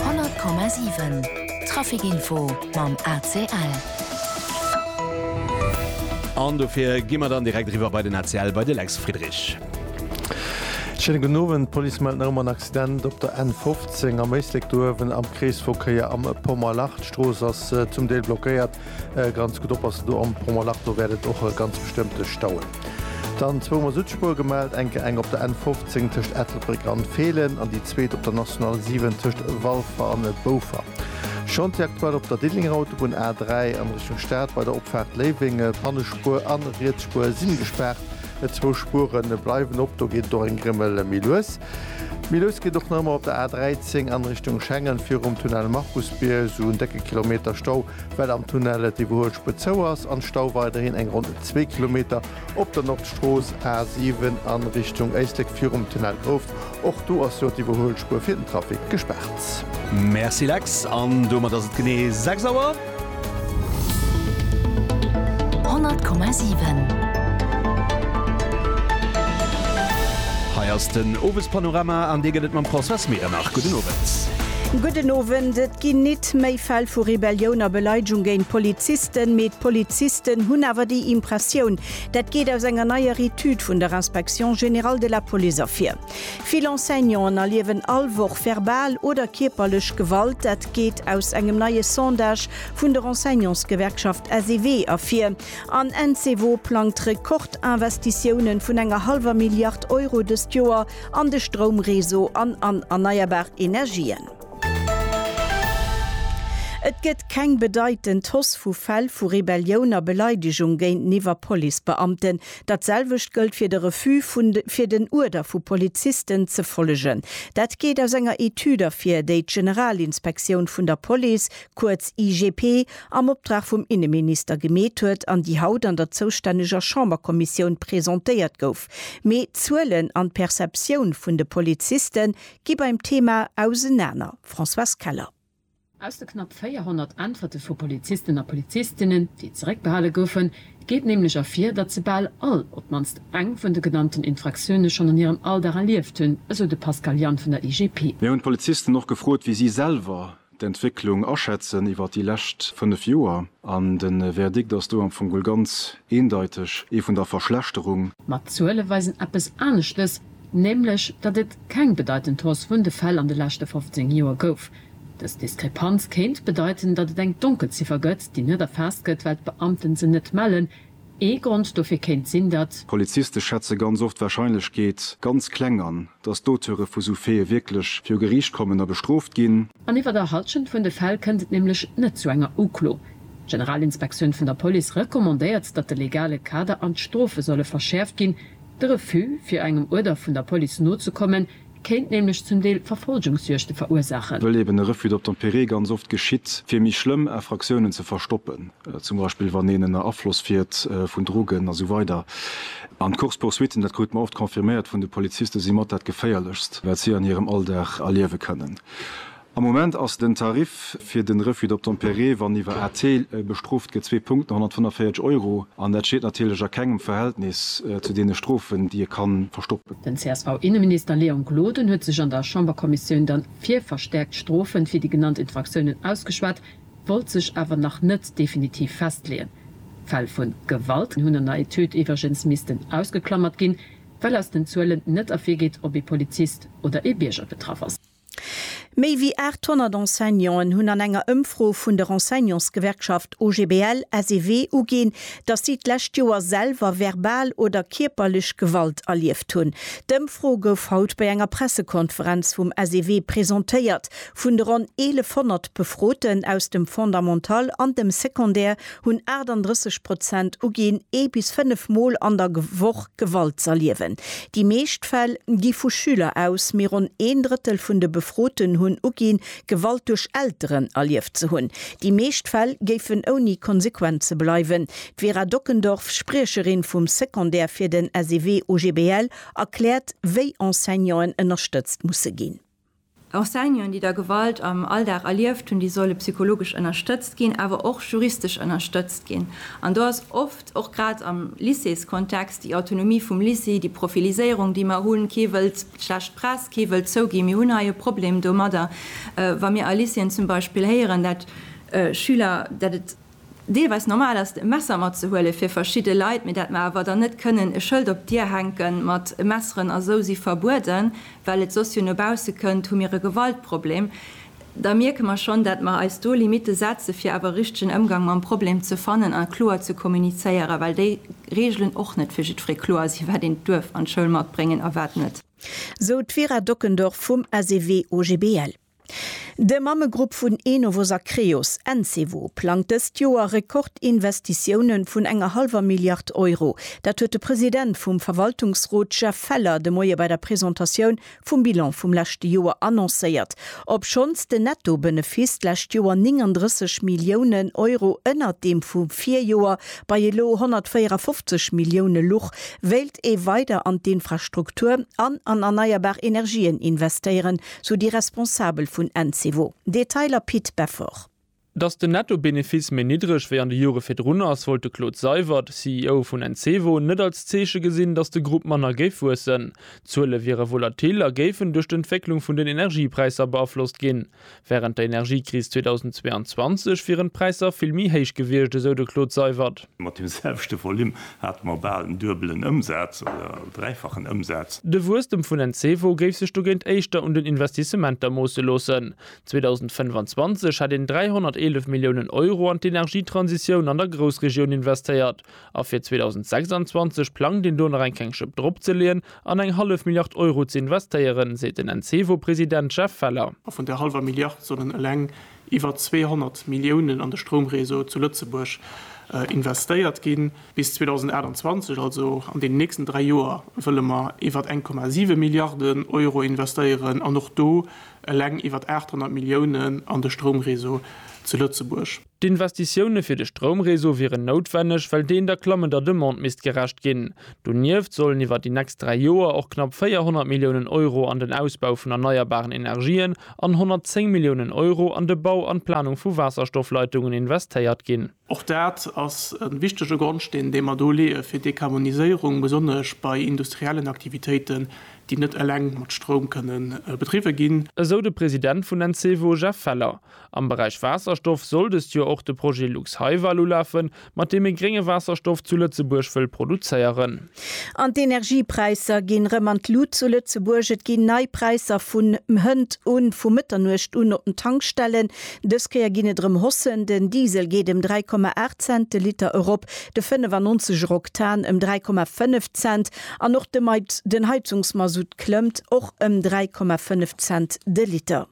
100,7 Trafic Info mam ACL. An dofir gi mer dann direkt eriwwer bei den ACL, bei de Lex Friedrich. Schéine gudden Owend. D'Police mellt nach ëmmer en Accident op der N15 am Éislek, do uewen am Kreesverkéier am Pommerlach. D'Strooss ass zum Deel blockéiert, Ganz gudd oppassen do am Pont Mollach, do wärt et och ganz bestëmmt stauen. Dann zwou mer Südspuer gemellt, enke eng op der N 15 tëscht Ettelbréck an Feelen an déi zweet op der National 7 tëscht Walfer an Boufer. Chantier aktuell op der Diddelenger Autobunn A 3 an Richtung Stad bei der Opfaart Léiweng. Pannespuer an Rietsspuer sin gespaart, zwou Spueren bleiwen op, do geet et och eng Grimmel méi lues. Méi lues geet och nach ëmmer op der A13 an Richtung Schengen virum Tunnel Markusbier sou en décke Kilometer Stau, well am Tunnel d'Iwwerhuelspuer zou ass an Stau weiderhin eng ronn zwee Kilometer op der Nordstrooss A7 an Richtung Éislek virum Tunnel Grouft. Och do ass jo d'Iwwerhuelspuer fir den Trafic gespaart. Merci Lex, an domat ass et genee 6 Auer. Honnert Komma siwen. Hei ass den Owespanorama an dee gëtt et mam Françoise Medernach. Gudden Owend. Gudden Owend. Et ginn nit méi Fäll vu Rebellioun a Beleidegung géint Polizisten, mee d'Polizisten hunn awer déi Impressioun. Dat geet aus enger neier Etüd vun der Inspection générale de la Police ervir. Vill Enseignanten erliewen all Woch verbal oder kierperlech Gewalt. Dat geet aus engem neie Sondage vun der Enseignantsgewerkschaft SEW ervir. An Ensewo plangt Rekordinvestitiounen vun enger hallwer Milliard Euro dëst Joer an de Stroumreseau an an erneierbar Energien. Et gëtt keng bedeitend Hausse vu Fäll vu Rebellioun a Beleidegung géinteniwwer Policebeamten. Dat selwecht gëllt fir de Refus vun fir den Uerder vu Polizisten ze follegen. Dat geet aus enger Etüd ervir, déi d'Generalinspektioun vun der Police, kuerz IGP, am Optrag vum Inneminister gemeet huet an déi haut an der zoustänneger Chamberkommissioun presentéiert gouf. Mee d'Zuelen an d'Perceptioun vun de Poliziste gi beim Thema ausenaner, Françoise Keller. Aus de knapp 400 Äntwerte vu Polizisten a Polizistinnen, déi zeréckbehale goufen, geet nämlech ervir, datt se bal all op d'mannst eng vun de genannten Infraktioune schonn an hirem Alldag erlieft hunn, esou de Pascal Jann vun der IGP. Mir hunn d'Polizisten och gefrot, wéi si selwer d'Entwécklung aschätzen iwwer déi lescht 5 Joer. An de Verdikt ass do am Fong geholl ganz eendeiteg, ee vun der Verschlechterung. Ma d'Zuele weisen eppes aneschtes. nämlech datt et keng bedeitend Hausse vun de Fäll an de leschte 15 Joer gouf. Dës Diskrepanz kéint bedeiten, datt et eng Donkelziffer gëtt, déi net erfaasst gëtt, well d'Beamten se net mellen. Ee Grond dofir kéint sinn, datt. Poliziste schätze ganz oft d'Warscheinlechkeet ganz kleng an, datt d'Auteure vu sou Faite wierklech viru Geriicht kommen a bestrooft ginn. An iwwer der Halschent vun de Fäll kënnt et nämlech net zu enger Uklo. D'Generalinspektioun vun der Police recommandéiert, datt de legale Kader an d'Strofe solle verschäerft ginn. De Refus, fir engem Uerder vun der Police nozekommen, kéint nämlech zum Deel Verfolgungsjuegte verursaachen. Wëll eben e Refus d'obtempérer ganz oft geschitt, fir méi schlëmm Infractiounen ze verstoppen, zum Beispill wann een ënner Afloss fiert vun Drogen a sou weider. An d'Course-poursuitten, dat krute mer oft confirméiert vun de Polizisten, si mat dat Geféierlechst, wat si an hirem Alldag erliewe kënnen. Am Moment ass den Tarif fir den Refus d'obtempérer, wann iwwer AT bestrooft gëtt, zwee Punkten, 145 Euro, an dat steet natierlech a kengem Verhältnis zu deene Strofen, déi e kann verstoppen. Den CSV-Inneminister Léon Gloden huet sech an der Chamberkommissioun dann fir verstäerkt Strofen fir déi genannt Infraktiounen ausgeschwat, wollt sech awer nach net definitiv festleeën. Fäll vun Gewalt hunn an der Etüd iwwregens missten ausgeklammert ginn, well aus den Zuelen net ervirgeet, ob ee Polizist oder ee Bierger betraff ass. Méi wéi 800 Enseignanten hunn an enger Ëmfro vun der Enseignantsgewerkschaft OGBL, SEW uginn, datt si d'lescht Joer selwer verbal oder kierperlech Gewalt erlieft hunn. D'Ëmfro gouf haut bei enger Pressekonferenz vum SEW presentéiert. Vun de ronn 1.100 Befroten aus dem Fondamental an dem Secondaire hunn 38 Prozent uginn, ee bis fënnef Mol an der Woch Gewalt z'erliewen. Déi meescht Fäll gi vu Schüler aus, mee ronn een Drëttel vun de Befroten hunn uginn, Gewalt duerch Elteren erlieft ze hunn. Déi meescht Fäll géifen ouni Konsequenze bleiwen. D'Vera Dockendorf, Spriecherin vum Secondaire fir den SEW OGBL, erkläert, wéi Enseignanten ënnerstëtzt musse ginn. Enseignanten, déi da Gewalt am Alldag erlieft hunn, déi solle psychologesch ënnerstëtzt ginn, awer och juristesch ënnerstëtzt ginn. An do ass oft, och grad am Lycéeskontext, déi Autonomie vum Lycée, déi Profiliséierung, déi mer hunn, kee wëllt schlecht Press, kee wëllt zouginn, mir hunn hei e Problem domadder, wa mir a Lycéeën zum Beispill héieren, dat Schüler, dat et. deelweis normal ass e Messer matzehuelen fir verschidde Leit, mee dat mer awer dann net kënnen e Schëld op d'Dier hänken mat Messeren a sou si verbueden, well et soss jo no bausse kënnt, hu mir e Gewaltproblem. Da mierke mer schonn, dat mer eis do Limitte setze fir awer e richtegen Ëmgang mam Problem ze fannen a kloer ze kommunizéieren, well déi Reegelen och net fir jiddweree kloer sinn, wat een duerf an d'Schoul matbréngen a wat net. Sou d'Vera Dockendorf vum SEW-OGBL. De Mammegrupp vun Enovos a Creos, Encevo, plangt dëst Joer Rekordinvestitiounen vun enger hallwer Milliard Euro. Dat huet de President vum Verwaltungsrot Jeff Feller de Moie bei der Presentatioun vum Bilan vum leschte Joer annoncéiert. Obschonns den Netto-Benefiss d'lescht Joer 39 Milliounen Euro ënnert deem vum Virjoer bei elo 154 Millioune luch, wéilt ee weider an d'Infrastruktur an an erneierbar Energien investéieren, Sou déi Responsabel vun Encevo. Detailer Pit Beffort. Datt den Netto-Benefice méi niddreg wéi an de Jore virdrun ass, wollt de Claude Seywert, CEO vun Encevo, net als Zeeche gesinn, datt de Grupp manner géif wuessen. D'Zuele wiere volatil a géifen duerch d'Entwécklung vun den Energiepräisser beaflosst ginn. Wärend der Energiekris 2022 wieren d'Präisser vill méi héich gewiescht, esou de Claude Seywert. Mat dem selwechte Volume hate mer bal en duebelen Ëmsaz oder dräifachen Ëmsaz. De Wuesstem vun den Cevo géif sech dogéint éischter un den Investissementer moosse loossen. 2025 hätt een 311 Milliounen Euro an d'Energietransitioun an der Groussregioun investéiert a fir 2026 plangt een do nach eng keng Schëpp drop ze leeën an eng hallef Milliard Euro ze investéieren, seet den Encevo-President Jeff Feller. A vun där hallwer Milliard sollen eleng iwwer 200 Milliounen an de Stroumréseau zu Lëtzebuerg investéiert ginn. Bis 2028, also an deenen nächsten dräi Joer, wëlle mer iwwer 1,7 Milliarden Euro investéieren an och do eleng iwwer 800 Milliounen an de Stroumréseau zu Lëtzebuerg. D'Investitioune fir de Stroumréseau wieren noutwenneg, well deen der klammender Demande misst gerecht ginn. Donieft sollen iwwer déi nächst dräi Joer och knapp 400 Milliounen Euro an den Ausbau vun erneierbaren Energien, an 110 Milliounen Euro an de Bau an d'Planung vu Waasserstoffleitungen investéiert ginn. Och dat ass e wichtege Grondsteen, dee mer do leeë fir d'Dekarboniséierung, besonnesch bei industriellen Aktivitéiten, déi net eleng mat Stroum kënne bedriwwe ginn. Esou de President vun Encevo, Jeff Feller. Am Beräich Waasserstoff soll dëst Joer och de Projet Lux-Hyval ulafen, Mat deem ee grénge Waasserstoff zu Lëtzebuerg wëll produzéieren. An d'Energiepräisser ginn rëm an d'Lut zu Lëtzebuerg. Et ginn nei Präisser vun hënt un, vu Mëtternuecht un op den Tankstellen. Dës Kéier ginn et rëm Hossen. Den Diesel geet ëm 3,8 Cent de Liter erop, de 95 er Oktan ëm 3,5 Cent an och de den Heizungsmasutt klëmmt och ëm 3,5 Cent de Liter.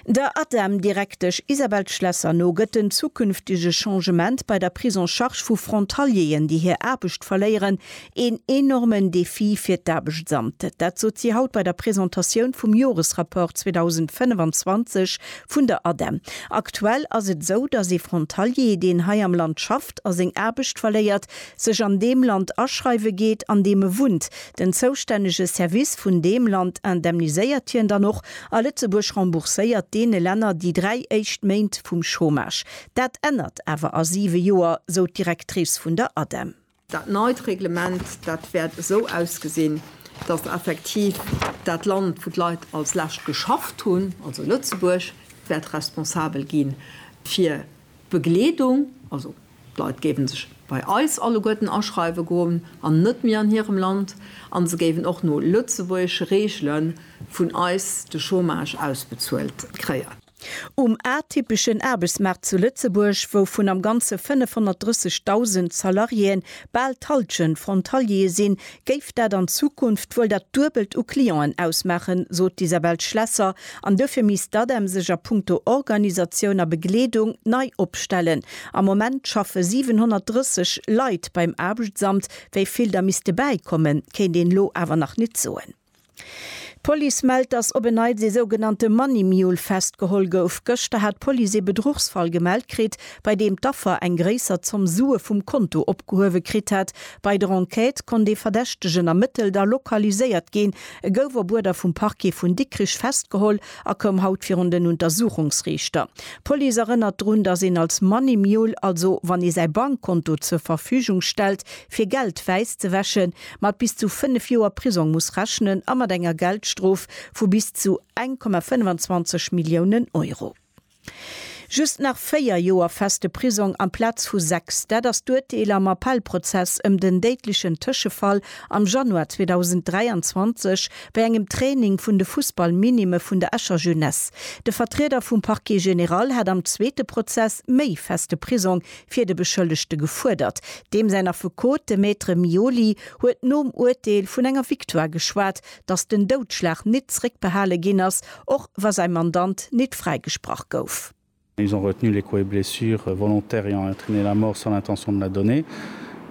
Der ADEM-Direktesch Isabelle Schlesser no gëtt den zukünftege Changement bei der Prise en charge vu Frontalieren, déi hir Aarbecht verléieren, een enormen Defi fir d'Aarbechtsamt. Dat sot si haut bei der Presentatioun vum Joresrapport 2025 vun der ADEM. Aktuell ass et esou, datt ee Frontalier, deen hei am Land schafft a seng Aarbecht verléiert, sech an deem Land aschreiwe geet, an deem e wunnt. Den zoustännege Service vun deem Land indemniséiert hien dann och, a Lëtzebuerg rembourséiert deene Länner déi dräi éischt Méint vum Chômage. Dat ännert awer a siwe Joer, sou d'Directrice vun der ADEM. Dat neit Reglement, dat wäert esou ausgesinn, datt effektiv dat Land, wou d'Leit als lescht geschafft hunn, also Lëtzebuerg, wäert responsabel gi fir d'Begleedung, also. D'Leit géiwen sech bei eis alleguerten aschreiwen goen an net méi an hirem Land an se géiwen och no lëtzebuergesche Reegelen vun eis de Chômage ausbezuelt kréien. Um atypeschen Aarbechtsmaart zu Lëtzebuerg, wou vun am Ganze 530.000 Salariéen bal d'Hallschent Frontaliere sinn, géif dat an Zukunft wuel dat Duebelt u Clienten ausmaachen, sot d'Isabelle Schlesser, an duerfir misst d'ADEM sech a punkto Organisatioun a Begleedung nei opstellen. Am Moment schaffe 730 Leit beim Aarbechtsamt, wéi vill der misste bäikommen, kéint een elo awer nach nit soen. D'Police mellt, dass op en Neits ee sougenannte Money Mule festgeholl gouf. Gëschter hat d'Police ee Bedruchsfall gemellt kritt, bei deem d'Affer eng gréisser Zomm Sue vum Konto opgehuewe kritt hat. Bei der Enquête konnt ee Verdächtegen ermëttelt a lokaliséiert ginn. E gouf op Uerder vum Parquet vun Dikrich festgeholl a koum haut virun den Untersuchungsriichter. D'Police erënnert drun, dass een als Money Mule, also wann ee säi Bankkonto zur Verfügung stellt, fir Geld wäiss ze wäschen, mat bis zu 5 Joer Prisong muss rechnen a mat enger Geldstrof vu bis zu 1,25 Milliounen Euro. Just nach 4 Joer feste Prisong amplaz vu 6, dat ass d'Urteel am Appellprozess ëm den déidlechen Tëschefall am Januar 2023 bei engem Training vun de Fussballminime vun der Escher Jeunesse. De Vertrieder vum Parquet général hat am zweete Prozess méi feste Prisong fir de Beschëllegte gefuerdert. Deem säin Affekot, de Maître Mioli, huet nom Urteel vun enger Victoire geschwat, datt den Doudschlag nit zréckbehale ginn ass, och wa säi Mandant nit fräigesprach gouf. Ils ont retenu les coups et blessures volontaires ayant entraîné la mort sans l'intention de la donner.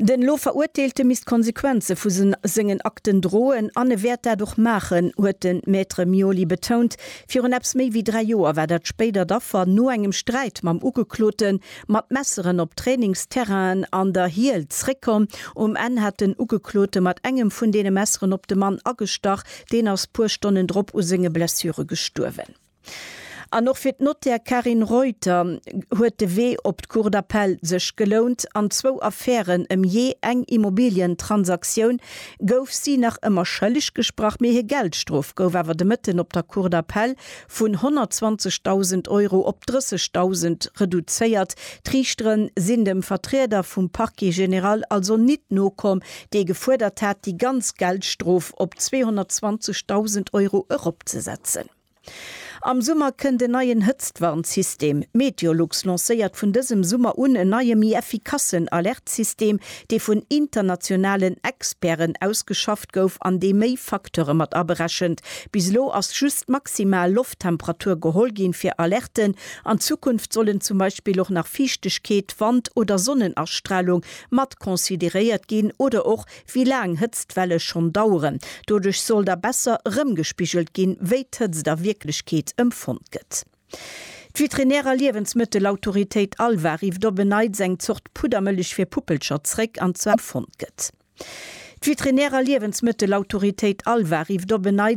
Den elo Verurteelte misst d'Konsequenze vu sengen Akten droen an e wäert dat och maachen, huet de Maître Mioli betount. Virun eppes méi wéi dräi Joer war dat spéidert Affer no engem Sträit mam Ugeklote mat Messeren op Trainingsterrainen an der Hiel zréckkomm. Um Enn hat den Ugeklote mat engem vun deene Messeren op de Mann agestach. Deen ass puer Stonnen drop u senge Blessure gestuerwen. An och fir d'Nottär Carine Reuter huet de Wee op d'Cour d'Appel sech gelount. An zwou Affären ëm jee eng Immobilientransaktioun gouf si nach ëmmer schëlleg gesprach, mee hir Geldstrof gouf awer de Mëtten op der Cour d'Appel vun 120.000 Euro op 30.000 reduzéiert. D'Riichtere sinn dem Vertrieder vum Parquet général also nit nokomm, dee gefuerdert hat, déi ganz Geldstrof op 220.000 Euro eropzesetzen. Am Summer kënnt en neien Hëtztwarnsystem. Meteolux lancéiert vun dësem Summer un en neie méi effikassen Alertsystem, dee vun internationalen Experten ausgeschafft gouf an dee méi Facteure mat aberechent. Bis elo ass just d'maximal Lofttemperatur geholl ginn fir Alerten. An Zukunft sollen zum Beispill och nach Fiichtegkeet, Wand oder Sonnenastralung mat consideréiert ginn oder och Wéi laang Hëtztwelle schonn daueren. Doduerch soll da besser erëmgespigelt ginn, wéi d'Hëtzt a Wierklechkeet empfonnt gëtt. D'Veterinär a Liewensmëttelautoritéit ALVA rifft op en Neits eng Zort Puddermëllech fir Puppelcher zréck, an zwar, Empfonnt gëtt. D'Veterinär a Liewensmëttelautoritéit ALVA rifft op en Neits.